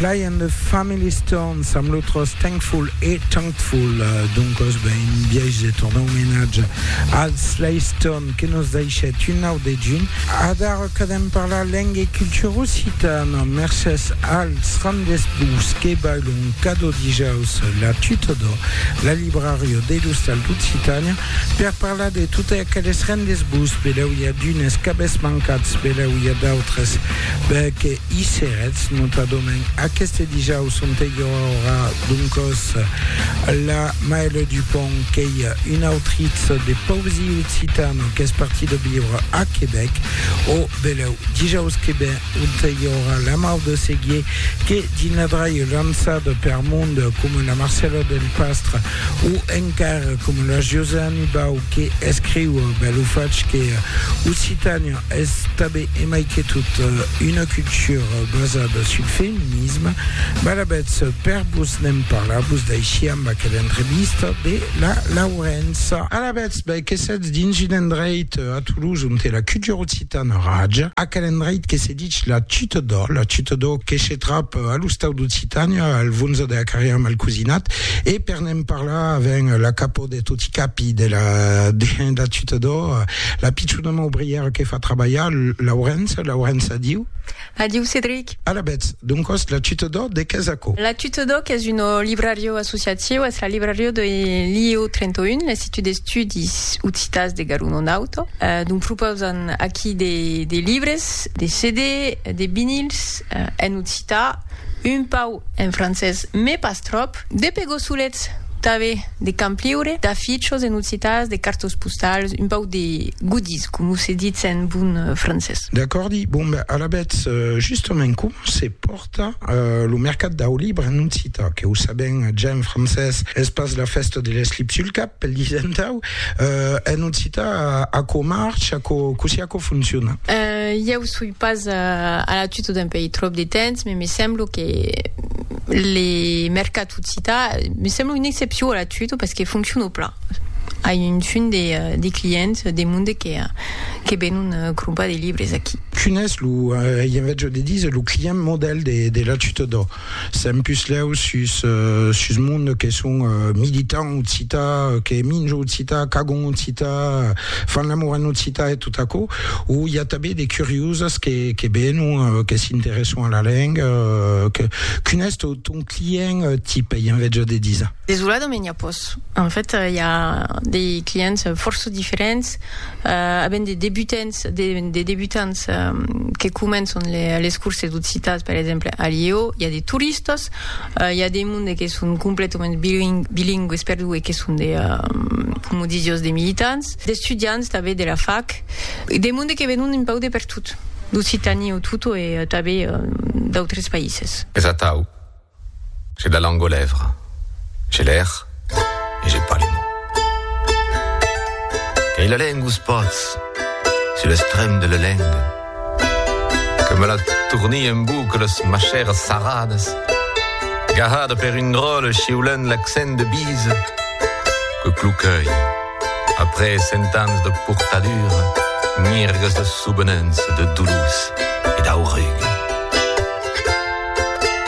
Fly and the Family Stones amb lo tros Thankful e Thankful. Doncos ben un biais de tornar omenatge al Sly Stone que nos daishèt un nau dejun. Adara cadem parlar lenga e cultura occitana. Mercés als randesbus que bailon cada dijaus la tuta de la libraria de l'Ostal d'Occitània. Per parlar de totes aqueles rendez-vous, belèu i a d'unes qu'avètz mancats, belèu i a d'autres que i serètz, notadament aqueste dijaus onte i aurà doncòs la Maëlle Dupont qu'ei una autritz de poesia occitana qu'es partida viure a Quebec, o belèu dijaus que ven onte i aurà la Maude Seguier que dins la draie lançada per monde coma la Marcèla Delpastre O encara coma la Josani Bau que escriu, ben lo fach, que Occitània es tanben e mai que tot una cultura basada sul feminisme, balabètz per vos ne'n parlar vos d'aici amb aquela entrevista de la Laurença. Alabètz, ben que sètz dins un endreit a Toulouse onte la cultura occitana raja, aquel endreit que se Ditz la chuta d'ò, la chuta d'ò que se trap a l'ostau d'Occitània, al Vonza de la Carrièra Malcosinat, e per ne'n parlar avèm la capò de toti capi de la de la chuta d'ò, la pichona maubrièra que fa trabalhar, Laurença, Laurença, adiu. Adiu, Cedric. Alavetz, doncòs, la chuta d'ò de qu'es aquò? La chuta d'ò qu'es un librariu associatiu, es la librariu de l'IEO 31, l'Institut d'Estudis Occitans de Garona-Nauta, dont propausan aquí de de libres, discs de CD, de vinils en occità, un pau en francés mes pas tròp, de pegossolets tanbe de campliure, d'afichos en occitàs, de cartos postals, un pau de goodies coma se ditz en bon francés. D'acòrdi, bon ben alavetz, justament comment se pòrta? Tà lo mercat dau libre en occitan, que o sabèm ja en francés, es pas la fèsta de l'eslip sul cap, pel disentau, en occitan aquò marcha, cossí aquò fonciona? Ieu soi pas a la tuta dempèi tròp de temps, me me semblo que le mercat occitan, me semblo una excepcion a la tuta, pas que fonciona plan. Ai un fum de clients de monde que benon crompar de libres aquí. Quin es lo, ei en vètge de díser, lo client modèl de la Ciutat d'Òc? Sèm puslèu sus sus monde que son militant occità, que minjo occità, qu'agon occità, fan l'amor en occità e tot aquò, o i a tanben de curioses que que venon, que s'interèsson a la lenga, que, quin es ton ton client tip, ei en vètge de díser? Desolada me n'i a pòs. En fait, i a de clients fòrça diferents, a ben de debutants, de debutants que començon les curses d'occitan per exemple a Lièu i a de toristas i a de monde que son completament bilingües per deu e que son de coma disi jos de militants d'estudiants tanben de la fac e de monde que venon un pauc de pertot d'occitània o tot e tanben d'autres païses. Es atau J'ai la langue aux lèvres, j'ai l'air et j'ai pas les mots. Qu'ei la lengue ous pòts, sur l'estrem de la lengue, que me la tourni en boucle ous machères sarrades, gahada per un dròlle chiulent l'accent de bise, que cloquei, après cent ans de portadura, mirgues de soubenença, de doulous e d'aurugues.